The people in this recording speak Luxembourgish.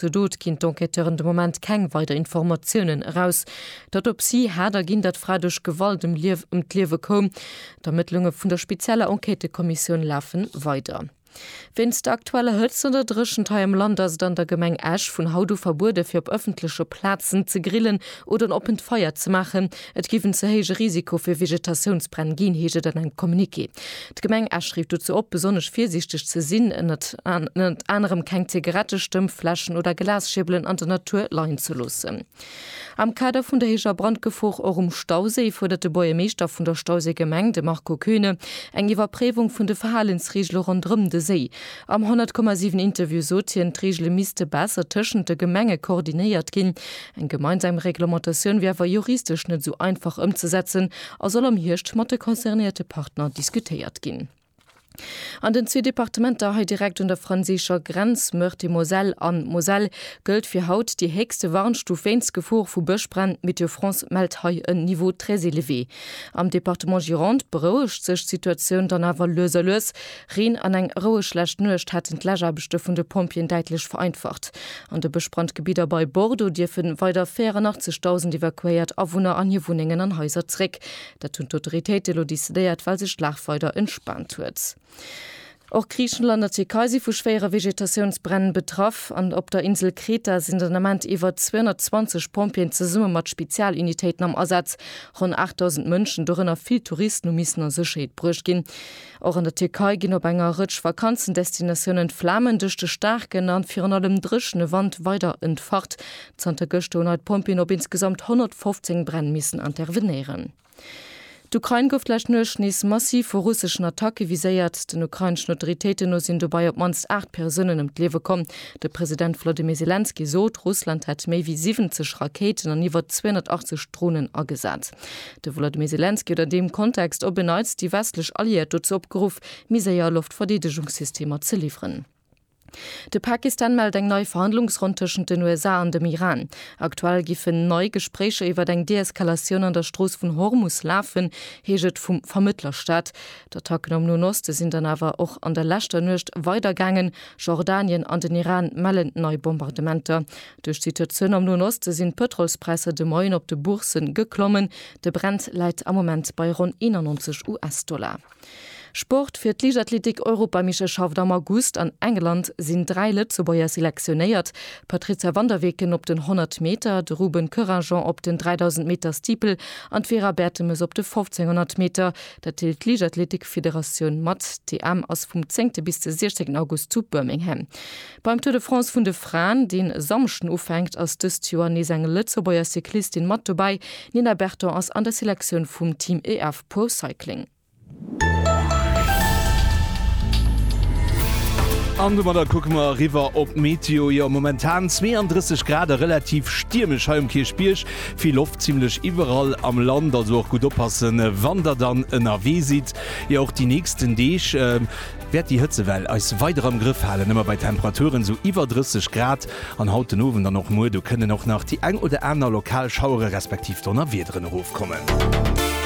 Zur Dot ginn d'Enquêteuren de Moment keng weider Informatiounen eraus. D'Autopsie hat erginn, datt d'Fra duerch Gewalt ëm d'Liewe koum. D'Ermëttlunge vun der spezieller Enquêtëkommissioun lafe weider. Wéinst der aktueller Hëtzt an der Dréchent hei am Land ass et an der Gemeng Esch vun haut u verbueden, fir op ëffentleche Plazen ze grillen oder en oppent Feier ze maachen. Et géif en ze héije Risiko fir Vegetatiounsbränn ginn, heescht et an engem Communiqué. D'Gemeng Esch rifft dozou op, besonnesch virsiichteg ze sinn, ënnert anerem keng Zigarette, Stëmmfläschen oder Glasschierbelen an der Natur leien ze loossen. Am Kader vun der héijer Brandgefor och um Stauséi fuerdert de Buergermeeschter vun der Stauséigemeng, de Marco Kühne, eng Iwwerpréiwung vun de Verhalensreegele ronderëm de Séi. Am 100,7 Interview sot hien, d'Reegele misste besser tëschent de Gemenge koordinéiert ginn. Eng gemeinsam Reglementatioun wier awer juristesch net esou einfach ëmzesetzen a soll am Hierscht mat de concernéierte Partner diskutéiert ginn. An den zwee Departementer hei direkt un der franséischer Grenz, Meurthe-et-Moselle a Moselle, gëllt fir haut déi héchste Warnstuf wéinst Gefor vu Bëschbränn. Météo France mellt hei en Niveau très élevé. Am Departement Gironde berouegt sech d'Situatioun dann awer lues a lues. Reen an eng roueg schlecht Nuecht hätten d'Läschaarbechte vun de Pompjeeën däitlech vereinfacht. An de Bëschbrand Gebidder bei Bordeaux dierfe weider 84.000 evakuéiert Awunner an hir Wunnengen an Haiser zréck. Dat hunn d'Autoritéite elo decidéiert, well sech d'Lag weider entspaant huet. Och Griichenland a Tierkei si vu schwéiere Vegetatiounsbränn betraff. An op der Insel Kreta sinn den Ament iwwer 220 Pompjeeën zesumme mat Spezialunitéiten am Asaz. Ronn 8.000 Mënschen, dorënner vill Touristen, hu missen a Sécherheet bruecht ginn. Och an der Tierkei ginn op enger Rëtsch Vakanzendestinatiounen d'Flamen duerch de staarken an virun allem dréchene Wand weider entfacht. Zanter gëschter hunn hei d'Pompjeeën op insgesamt 115 Bränn missen intervenéieren. D'Ukrain gouf d'lescht Nuecht nees massiv vu russeschen Attacke viséiert. Den ukraineschen Autoritéiten no sinn dobei op d'mannst 8 Persounen ëm d'Liewe komm. De President Volodymyr Selenskyj sot, Russland hätt méi wéi 70 Rakéiten an iwwer 280 Dronen agesat. De Wolodymyr Selenskyj huet an deem Kontext op en Neits déi westlech Alliéiert dozou opgeruff, méi séier Loftverdeedegungssystemer ze liwweren. De Pakistan mellt eng nei Verhandlungsronn tëschent den USA an dem Iran. Aktuell giffen nei Gespréicher iwwer eng Deeskalatioun an der Strooss vun Hormus lafen, heescht et vum Vermëttlerstat. D'Attacken am Noen Oste sinn dann awer och an der leschter Nuecht weidergaangen. Jordanien an den Iran mellen nei Bombardementer. Duerch d'Situatioun am Noen Oste sinn d'Pëtrolspräisser de Moien op de Boursse geklommen. De Brent läit am Moment bei ronn 91 US-Dollar. Sport, Fir d'Liichtathleetik-Europameeschterschaft am August an England sinn 3 Lëtzebuerger selektionéiert, D'Patrizia van der Weken op den 100 Meter, de Ruben Couragent op den 3000 Meter Steeple an d'Vera Bertemes op de 1500 Meter. Dat deelt d'Liichtathleetik-Federatioun mat. D'EM ass vum zéngte bis de 16 August zu Birmingham. Beim Tour de France vun de Fraen, deen e Samschden ufänkt, ass dëst Joer nees eng Lëtzebuerger Cyclistin mat dobäi. D'Nina Berton ass an der Selektioun vum Team EF Pro Cycling. An domadder kucke mer eriwwer op d'Meteo. Jo, momentan 32 Grad a relativ stiermesch hei um Kierchbierg. Vill Loft zimmlech iwwerall am Land, also och gutt oppassen, wann der dann ënnerwee sidd. Jo, och déi nächsten Deeg. wäert déi Hëtzewell eis weider am Grëff halen, ëmmer bei Temperaturen esou iwwer 30 Grad. An haut den Owend an och muer, do kënnen och nach déi eng oder aner lokal Schauere respektiv Donnerwiederen erofkommen.